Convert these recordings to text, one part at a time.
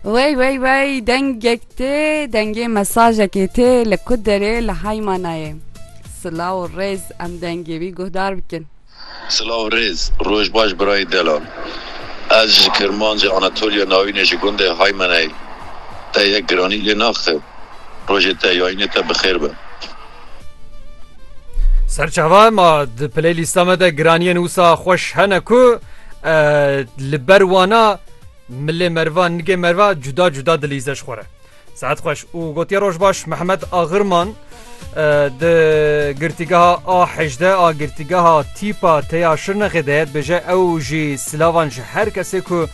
Wey wey wey dengek tê dengê mesajekê tê li ku derê li heyma nayê Silaw û rêz em dengê wî guhdar bikin. Silaw û rêz, roj baş birayê Delal. Ez ji Kirmancê Anatoliya Navînê ji gundê Haymanayê te yek giranî lê naxim. Rojê te yayînê te bi xêr be. Serçava ma di playlîsta me de giraniyên wisa xweş hene ku li ber wana milê merva nigê merva cuda cuda dilîze ji xwe re. Saet xweş û gotiye roj baş Mehmet Axirman di girtîgeha a hejde a girtîgeha tîpa teya şirnexê de dibêje ew jî silavan ji her kesê ku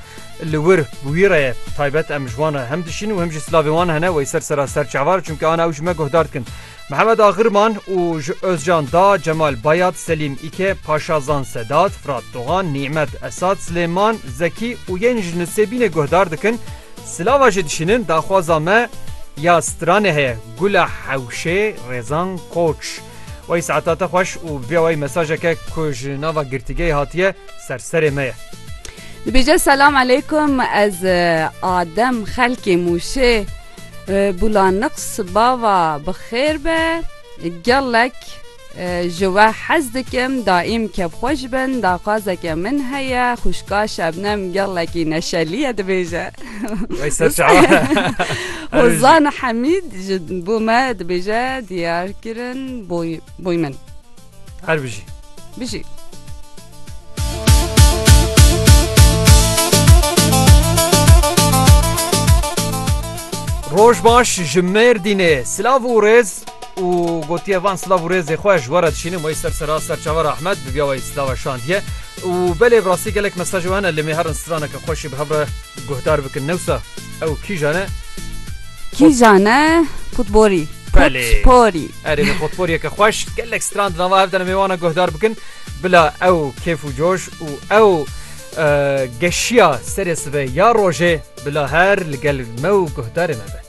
Li wir bi wî re ye. Taybet em ji wan re hem dişîn û hem jî silavên wan hene wey ser sera serçavar çunke ana ew ji me guhdar dikin. Mihemed Axirman û ji Ozcan da, Cemal Bayat, Selîm Îke, Paşazan Sedat, Firat Dogan, Nîmet Esad, Silêman Zekî û yên ji Nisêbînê guhdar dikin. Silava jê dişînin daxwaza me ya stranê heye, Gula Hewşê, Rêzan Koç. Wey saeta te xweş û vê wey mesajeke ku ji nava girtîgeyê hatiye ser serê me ye. Dibêje selam aleykum ez adem xelkê mûşê bulaniqs bava bi xêr be gelek ji we hez dikim daîm kevxweş bin daxwazeke min heye xwişka şebnem gelekî neşeliye dibêje. Wey ser çawa. Hozan Hemîd ji bo me dibêje diyar kirin boy min. Her bijî. Bijî. Roj baş ji Mêrdînê silav û rêz û gotiye van silav û rêzê xwe ji were dişînim wê ser sera ser çavar Ahmed bi biya wê silava şandiye û belê bi rastî gelek mesaj hene lê mêherin straneke xweşî bi hev re guhdar bikin newsa Ew kîjan e? Kîjan e? Potporî. Belê. Potporî. Erê vê potporiyeke xweş gelek stran di nava hev de ne mêwana guhdar bikin. Bila ew kêf û coş û ew geşiya serê sibe ya rojê bila her li gel me û guhdarê me be.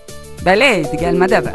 Belê, di gel me de be.